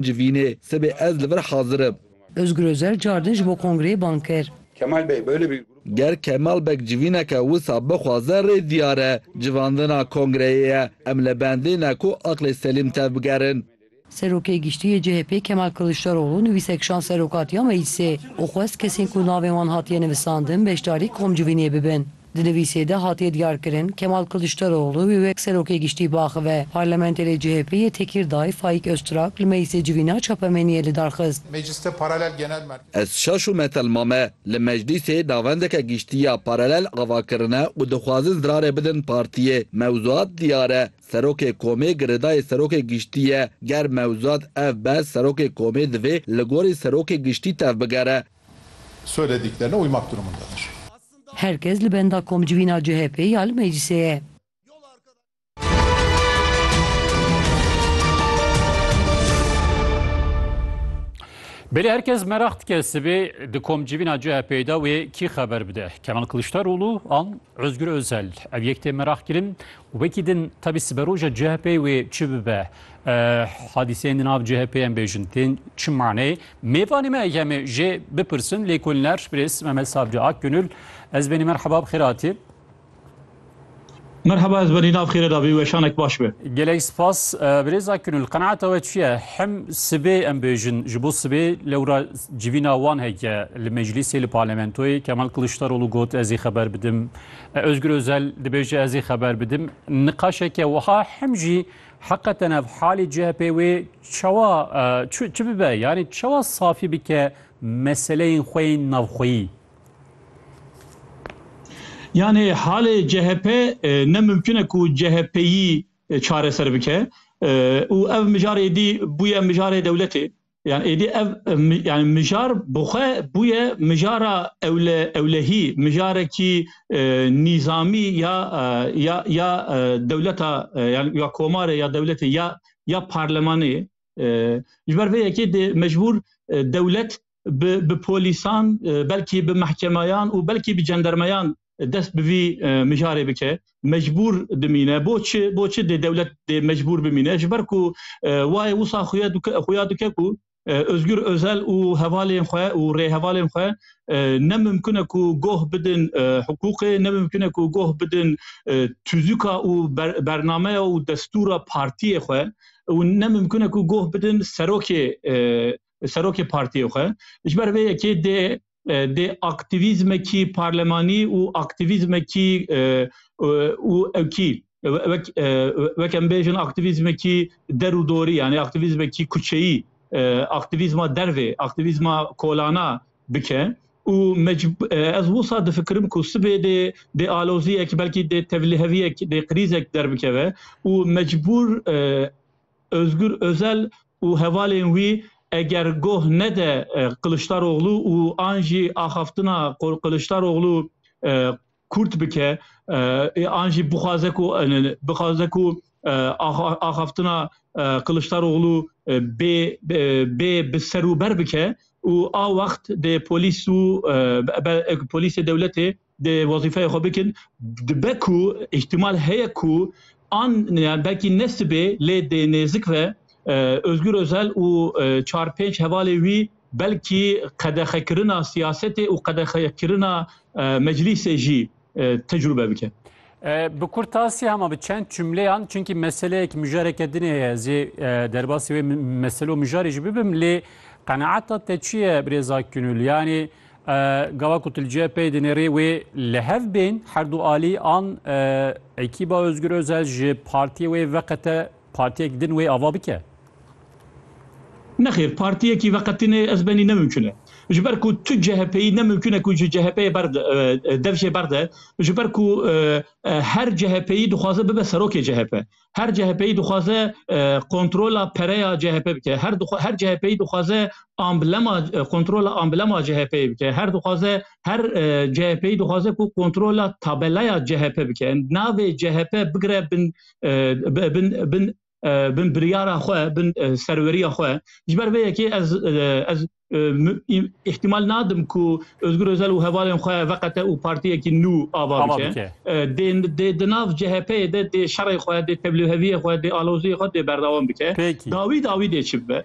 Civînê, sibê ez li vir hazir im. Ozgur Ozel cardin ji bo kongreyê bang kir. Kemal Bey böyle bir grup. Ger Kemal Beg civîneke wisa bixwaze rê diyar e. Civandina kongreyê ye. Em li bendê ne ku aqlê selîm tevbigerin. Serokê Giştî yê CHP'ê Kemal Kiliçdaroglu nivîsek şand serokatiya meclîsê û xwest kesên ku navên wan hatiye nivisandin beşdarî komcivînê bibin. Di nivîsê de hatiye diyarkirin, Kemal Kiliçdaroglu wê wek Serokê Giştî biaxive. Parlamentê lê CHP'ê yê Tekîrdayê Faîk Oztrak li meclisê civîna çapemeniyê lidarxist. Ez şaş û metelma me li meclisê navendeke giştî ya paralel ava kirine û dixwazin zirarê bidin partiyê. Mewzuat diyar e, Serokê komê girêdayê Serokê Giştî ye. Ger mewzuat ev be Serokê komê divê li gorî Serokê Giştî tevbigere. Her kes li benda komcivîna CHP'ê ya li meclîsê ye. Belê her kes meraq dike sibê di komcivîna CHP'ê de wê kî xeber bide? Kemal Kiliçdaroglu an Ozgur Ozel? Ev yek tê meraqkirin û wekî din tevî siberoja CHP'ê wê çi bibe? Hadîseyên di nav CHP'ê em bêjin tên çi maneyê Mêvanê me ê em jê bipirsin lêkolîner Birêz Mehmet Sabri Akgönül. Ez benî merheba bi xêr hatî. Merhaba ez benî nav xêre dabî weşanek baş be. Gelek spas Birêz Akgönül qenaata we çi ye? Hem sibê em bêjin ji bo sibê lewra civîna wan heke li meclîsê li parlamentoyê Kemal Kiliçdaroglu got ez ê xeber bidim. Özgür Özel dibêje ez ê xeber bidim. Niqaşeke wiha hem jî Heqeten ev halê CHP'ê wê çawa çi bibe? Yanî çawa safî bike meseleyên xwe yên navxweyî? Yanî halê CHP ne mimkun e ku CHP'yî çareser bike û ev mijarê dî bûye mijarê dewletê. Yani êdî ev yani mijar bi xwe bûye mijara ewle ewlehî mijarekî e, nîzamî ya e, ya ya e, dewleta e, yani ya komarê ya dewletê ya ya parlemanê e, ji ber vê yekê dê mecbûr e, dewlet bi bi polîsan e, belkî bi mehkemayan û belkî bi cendermeyan dest bi vî mijarê bike mecbûr dimîne bo çi bo çi dê dewlet dê mecbûr bimîne ji ber ku wayê wisa xuya xuya dike ku Özgür Özel û hevalên xwe û rêhevalên xwe ne mimkune ku goh bidin hiqûqê ne mimkune ku goh bidin tuzûka û bernameya û destûra partiyê xwe û ne mimkune ku goh bidin serokê serokê partiyê xwe ji ber vê yekê dê dê aktîvîzmekî parlemanî û aktîvîzmekî û ewkî wek wek em bêjin aktîvîzmekî der û dorî yanî aktîvîzmekî kuçeyî aktîvîzma dervê aktîvîzma kolana bike. û ez wisa difikirim ku sibê dê dê aloziyek belkî dê tevliheviyek dê krîzek derbikeve û mecbûr Ozgur Ozel û hevalên wî eger goh nede Kiliçdaroglu û an jî axaftina Kiliçdaroglu kûrt bike ê an jî bixwaze ku bixwaze ku axaftina Kiliçdaroglu bê bê bi serûber bike û a wext dê polîs û polîsê dewletê Dê wezîfeya xwe bikin. Dibe ku îhtimal heye ku an yani belkî ne sibê lê dê nêzik ve Özgür Özel û çar pênc hevalê wî belkî qedexekirina siyasetê û qedexekirina meclîsê jî tecrube bike. Bi kurtasî hema bi çend cumleyan çunkî meseleyek mijareke din heye ez ê derbasî wê meselo mijarê jî bibim lê qenaeta te çi ye Birêz Akgünül? Yanî Gava ku Tilce pey dinêrê wê li hev bên herdu alî an ekîba Özgür Özel ji partiyê wê veqete partiyek din wê ava bike? Nexêr, partiyekî veqetinê ez benî ne mimkun e. Ji ber ku tu CHPyî ne mimkun e ku ji CHPyê ber dev jê berde ji ber ku her CHPyî dixwaze bibe serokê CHP. her CHP'yî dixwaze e, kontrola pereya CHP bike. Her her CHP'yî dixwaze amblema e, kontrola amblema CHP'yê bike. Her dixwaze her e, CHP'yî dixwaze ku kontrola tabelaya CHP bike. Navê CHP bigire bin bin bin bin biryara xwe bin serweriya xwe. Ji ber vê yekê ez ez ihtimal nadim ku Özgür Özel û hevalên xwe veqete û partiyekî nû ava bike dê di nav CHP'yê de dê şerê xwe dê teblûheviyê xwe dê aloziyê xwe dê berdewam bike dawî dawî dê çi bibe